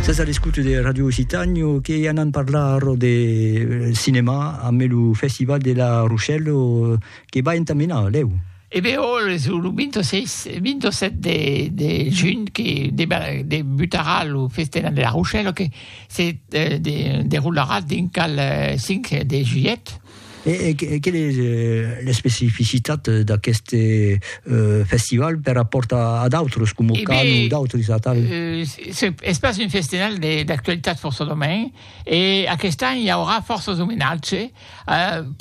Sas a l'escouta de Radio Occitània que anam parlar arrò de cinemà ambe lo Festival de la Rochelle que va entamenar, lèu. E ben òl es lo 26, 27 de, de junh que debutarà lo Festival de la Rochelle que se deroularà dinc al 5 de julhet. E quelle es l'especificitat d'aqueste festival per rapòrt a d'autres, coma o Can o d'autres atal? Es pas un festival d'actualitat fòrça domain, e aquest an i aurà fòrças omenatge,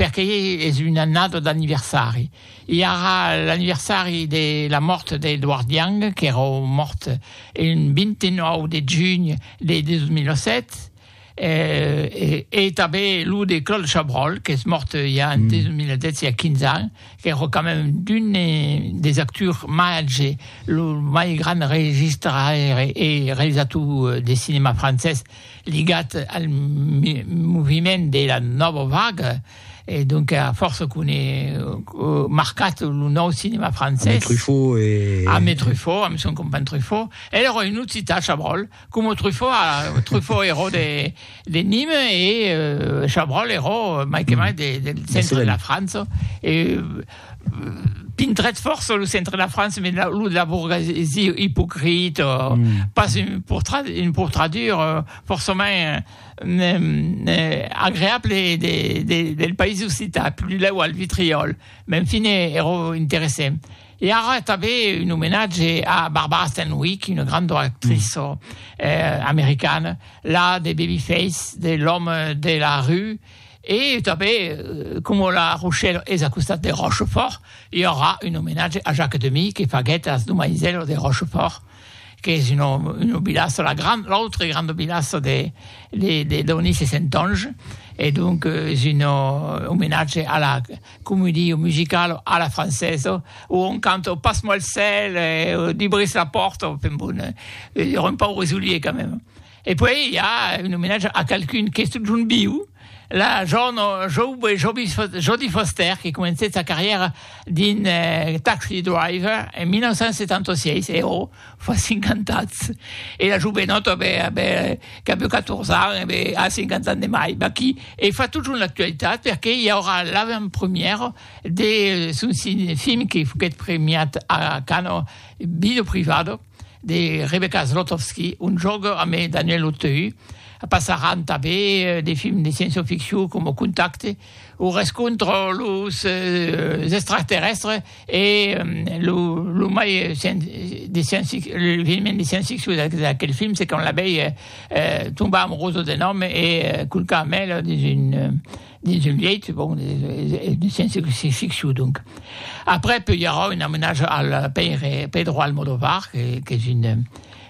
perque es una annada d'anniversari. I aurà l'anniversari de la mòrt d'Edward Young, qu'èra mòrt un 29 de junh de 2007, e tanben lo de Claude Chabrol qu'es mòrt ja en 2010 a 15 ans qu'èra quand même d'un des actors màger lo mai grand registraire e realizator de cinèma francés ligat al moviment de la nòva vaga e donc a fòrça qu'on è marcat lo nòu cinèma francés, amé Truffaut, amé Truffaut, amé son companh Truffaut, el èra un occitan Chabrol, Coma Truffaut, Truffaut eró de de Nîmes e Chabrol eró mai que mai de del centre de la França e pintrèt fòrça lo centre de la França mès lo de la bourgesie ipocrit pas un portrat un portradur fòrçament agreable de de del país occitan, plus lèu al Vitriòl, mès en fine eró interessent. E ara tanben un omenatge a Barbara Stanwyck, una granda actriça americana, la de Babyface, de L'homme de la rue, e tanben coma la Rochèla es a costat de Rochefòrt, i aurà un omenatge a Jacques Demy que faguèt as domaisèlas de Rochefòrt. qu'es una una vilaça, la grande, l'autre grande vilaça de de de Donis e Sentonge, e donc es un omenatge a la comedia musicala a la francesa, où on cante oh passe-moi le sel, eh, oh dibris la porte, enfin bon, un pauvre Zoulier quand même. E puèi i a un omenatge a qualqu'un qu'es totjorn viu, la jorna joube Jodie Foster que comencèt sa carrièra dins Taxi Driver en 1976, e ò, fa 50 ans! E la jovenòta qu'avèu 14 ans e be a 50 ans de mai, vaquí, e fa totjorn l'actualitat perque i aurà l'avantpremièra de son film que foguèt premiat a Cannes, Vida privada. de Rebecca Zlotowski, un jòc amb Daniel Auteuil. Passaràn tanben de films de sciençoficcion coma Contacte o Rescontre los extraterrèstres e lo mai de sciençficcion de sciençficcion d'aquel film se quand la vei tombar amorosa d'un òme e culcar Mel dins un dins un lièit, bon, de sciéncia-ficcion, donc. Après, peu i aurà un amenatge al pèire Pedro Almodóvar, qu'es un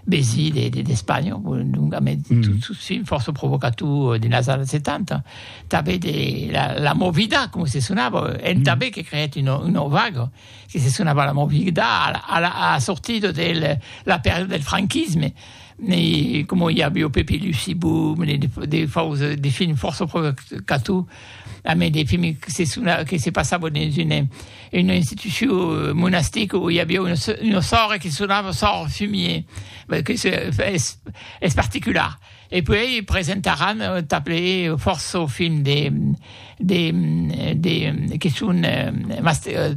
besi d'Espanha, donc a mès sos films fòrça provocators denas annadas 70. Tanben la Movida, coma se sonava, entà be que creèt una vaga. que se sonava la movida a la a sortida de la pèrdua del franquisme e coma i aviá Pepi Luci Boom e de fòus de films fòrça provocator a mei de films que se sonava que se passava dins una una institucion monastica o i aviá una una sòrre que sonava sòrre Fumier que se es es particular. E puèi presentaràn tanples fòrça films de de de que son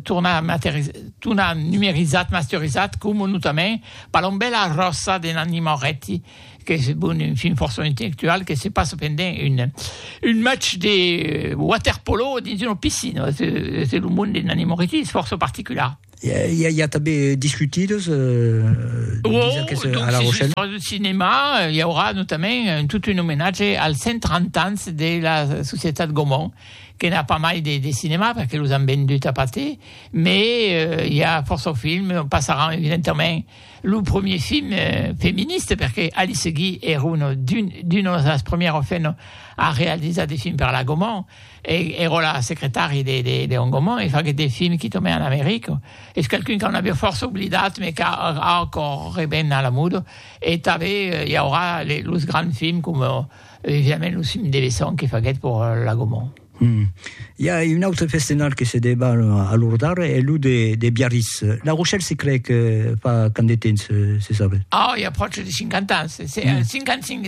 tornat numerizats, masterizats, coma notament Palombèla ròsa de Nanni Moretti, qu'es bon un film fòrça intellectual que se passa pendent un match de waterpolo dins una piscina, es lo monde de Nanni Moretti es fòrça particular. Il y a també discutidos wow, que se, a La Rochelle. L'histoire du cinéma, il y aura notamment tout un hommage al 130 ans de la Societat Gaumont, que n'a pas mai de, de cinéma, perquè los han vendut a Pathé, mais euh, il y a força film, on passarà evidentment le premier film euh, féministe, perquè Alice Guy era una, d'un, d'una de las premières femmes a realitzar des films per la Gaumont, E era secretari de Hongomont e faguèt de film qui tomè en Amerique. Es qualqu'un qu'an aviá fòrça oblidat me qu'a acòr reven a la muda. E tanbe i aurà los grands films coma evidentment los films de Besson que faguèt per la Gaumont. Hum. I a un autre festenar que se debat a Lordar e lo de Biarritz. La Rochelle se crei que fa quand de temps, se sabe? Oh, i a pròche de 50 ans, 55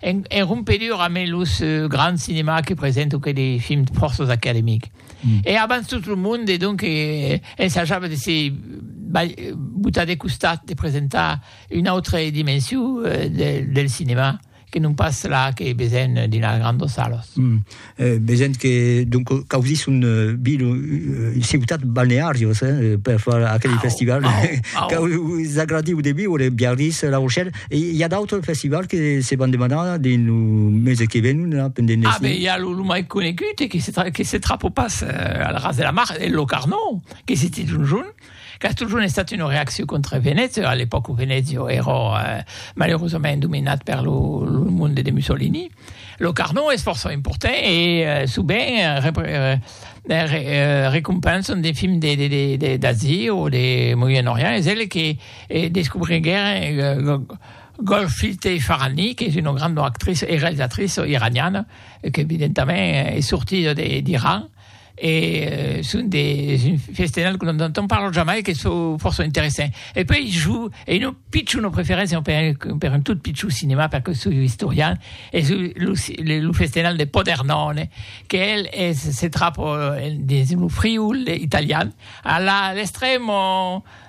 En en rompedura mes los grands cinemas que presento que de films fòrças academics. E abans tot lo monde donc ensajava de se botar de costat de presentar una autre dimension del del cinema que non pas la que besen dins las grandas salas. Vegent que donc causís un vil un ciutat balnearios eh per far aquel au, festival caus agradiu de viure Biarritz La Rochelle e i a d'autres festivals que se van demanar dins lo mese que venon là pendent l'estiu. Ah ben i a lo, lo mai conegut e que se que se trapo pas al ras de la mar e lo Carnot que se dit un jorn. Qu'as totjorn estat una reaccion contra Venècia, a l'epòca Venècia èra malerosament dominat per lo monde de Mussolini. Lo Carnot es fòrça important e sovent recompensan de films d'Asia o de Moyen Orient. Es el que descobriguèron Golshifteh Farahani, qu'es una granda actriça e realizatriça iraniana, qu'evidentament es sortida d'Iran. e son de un festenal que non entend parlar jamai que çò fòrça interessant e puèi jo e non pitjor una preferéncia per un tot pitjor cinema perque soi un istorian es lo festenal de Podernòne que el se trap dins lo Friul italian a l'estremo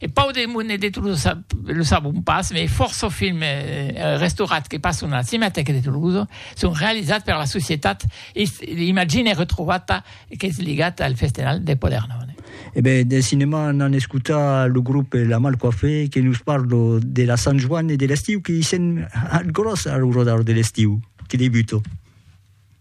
E Pau de Mont e de Tolosa lo sabon pas, mai fòrça o film e restaurats que passon a la Cinematèca de Tolosa son realizats per la societat Imagine Retrovata qu'es ligat al Festenal de Palerm. E ben, del cinema n'an escotat lo grop La Mal Coiffée que nos parlo de la Sant Joan e de l'estiu que i sèn al gròs a lo rodar de l'estiu que debuta.